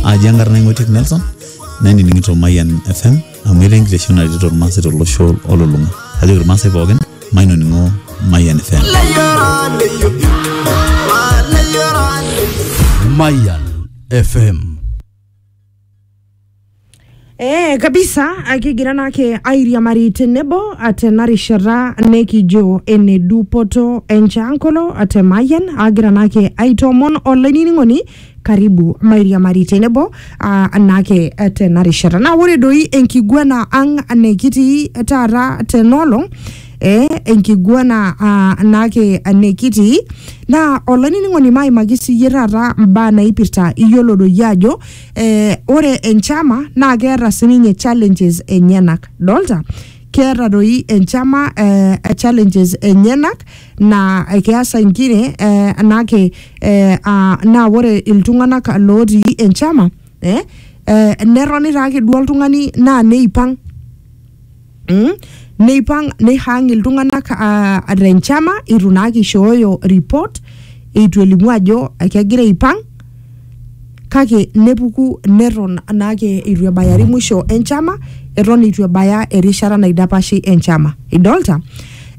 aji enkarna ing'otiek nelson nainining'ito mayian fm amu etaa enkiteshon naretito irmaasai tolosho olulung'a kajoki irmaasai pookin mainoning'o mayian fm Mayan FM Eh, kabisa akigira nake airiamari tenebo tena rishata nekijo ene dupoto enchankolo te Mayian agira nake aitoomon olainining'oni karibu mairiamari tenebo ah, nake eh, tena rishata naa ore doi enkiguana ang nekitii taata tenolong eh, enkiguana ah, nake nekitii naa olainining'oni maimaki siyie taata mbaa naipirta iyiolo doi ajo eh, ore enchama naa keeta sininye challenges enyenak dolta keeta doi enchama eh, challenges enyenak naa keasa nkire eh, nake eh, ah, naa ore iltung'anak lootii enchama eh, eh, netoni taake duo oltung'ani naa neipang Mm? neipang neihang iltung'anak ah, tenchama eitu naa kishooyo report eitu elimu ajo kegira aipang kake nepuku neton naake eitu ebayari mwisho enchama eton eitu ebaya erishata naidapashi enchama idolta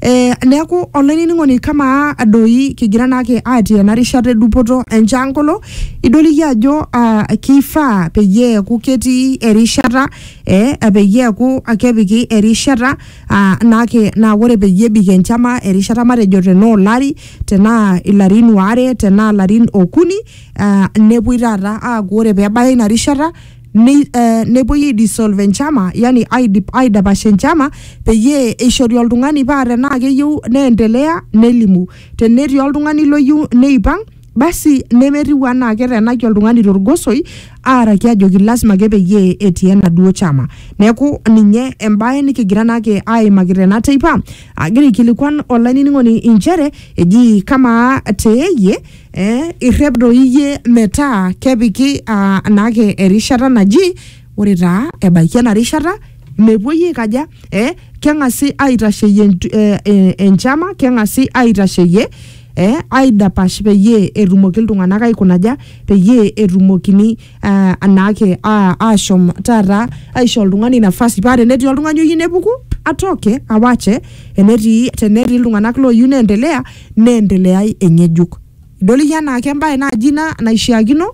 Eh, neeku olainining'oni kamaa doi kigira naake atii ena rishata edupoto enchangolo idoliki ajo ah, keifaa peyie eeku ketii erishata eh, peyie eku kepiki erishata ah, nake naa ore peyie ebik enchama erishata matejo tenaa olari tenaa ilarin waare tenaa ilarin okuni ah, nepuoi taata aaku ore peebaya ina rishata ni- eh, nepuoi aidisolve enchama yani aidip- aidapash enchama peyie eishori oltung'ani paa tenaa keyieu neendelea nelimu tenetii oltung'ani loyieu neipang' basi nemetiu anaa ketenaki oltung'ani torgosoi aaraki ajoki lasima ake peyie etii enaduo chama neeku ninye embae nikigira naake aimaki tena teipa agira aikilikuan olainining'oni inchere eji kamaa teeyie eh, irrep doi iyie metaa kepiki ah, naake erishata naji ore taa ebaiki ena rishata mepuoi aikaja eh, keng'asi aitasheyie entu- eh, eh, enchama keng'asi aitasheyie e aidapash peyie etumoki iltung'anak aikunaja peyie etumokini uh, anaake uh, ashom taata aisho oltung'ani nafasi paa tenetii oltung'ani oyieu nepuku atoke awache enetii tenetii iltung'anak looyieu neendelea neendeleai eng'ejuk idol iyie anaake embaye naaji ina naishiakino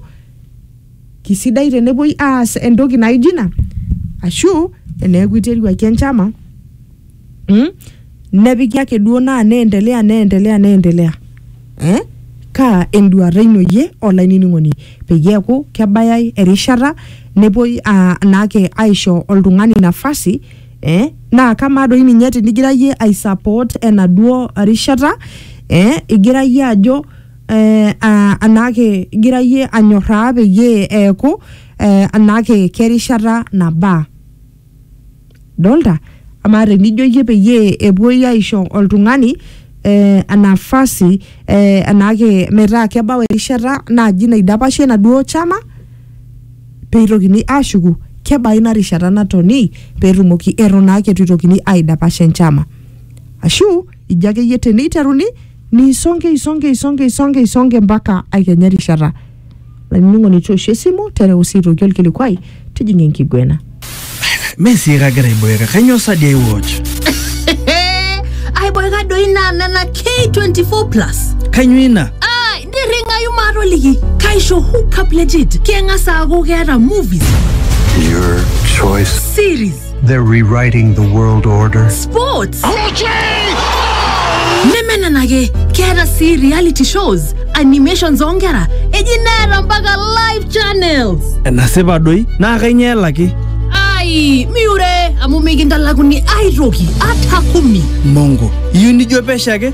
kisidai tenepuoi aas entoki naijo ina ashu eneeku iteruaki enchama mm? nepiki ake duo naa neendelea neendelea neendelea eh? kaa enduata ino yie olainining'oni peyie eeku kebayai erishata nepuoi aa- naake aisho oltung'ani nafasi eh? naa kamaa doi ninye tinigira yie aisupport enaduo rishata eh? igira yie ajo eh, aa- anaake igira yie anyorraa peyie eeku eh, anaake kerishata nabaa dolta amaa tenijo iyie peyie epuoi aisho oltung'ani eh, nafasi eh, enaake metaa kebau erishata naaji naidapashie enaduo chama peitokini ashuku kebaa ina rishata natoni peetumoki eton naake etu itokini aidapash enchama ashu ijo akeyie teneiteruni Nisonge isonge isonge isonge isonge mpaka aikenya rishata. Olainining'oni toosho esimu tereu sii aitoki olkilikuai tijing'a enkiguena. Mee sii kagira aiboeka, kainyoo sa dii aiwatch? aiboeka doi naa nena k24 plus Kainyoo ina? Ah, nirring'ayu maatoliki kaisho hookup legit keng'as aaku keeta movies Your choice. series They're rewriting the world order. Sports. Nemenenake keeta sii reality shows, animations oonkera, eji neeta mpaka live channels. Enasipa doi naa kainyoo elaki? Ai, miure amu mikintalakuni aitoki ata kumi. Mongo, iyieu nijo pesho ake?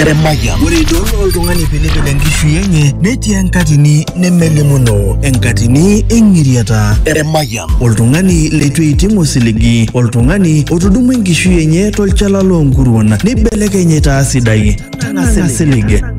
Eremaya. Ore idol oltung'ani pilipil enkishui enye netii enkatini nemelimuno enkatini eng'iriata. Eremaya. Oltung'ani leitu eiting osiligi, oltung'ani otudumua enkishui enye tolchala loonkuruon neibelekeny aitaa sidai. Nang'asilig.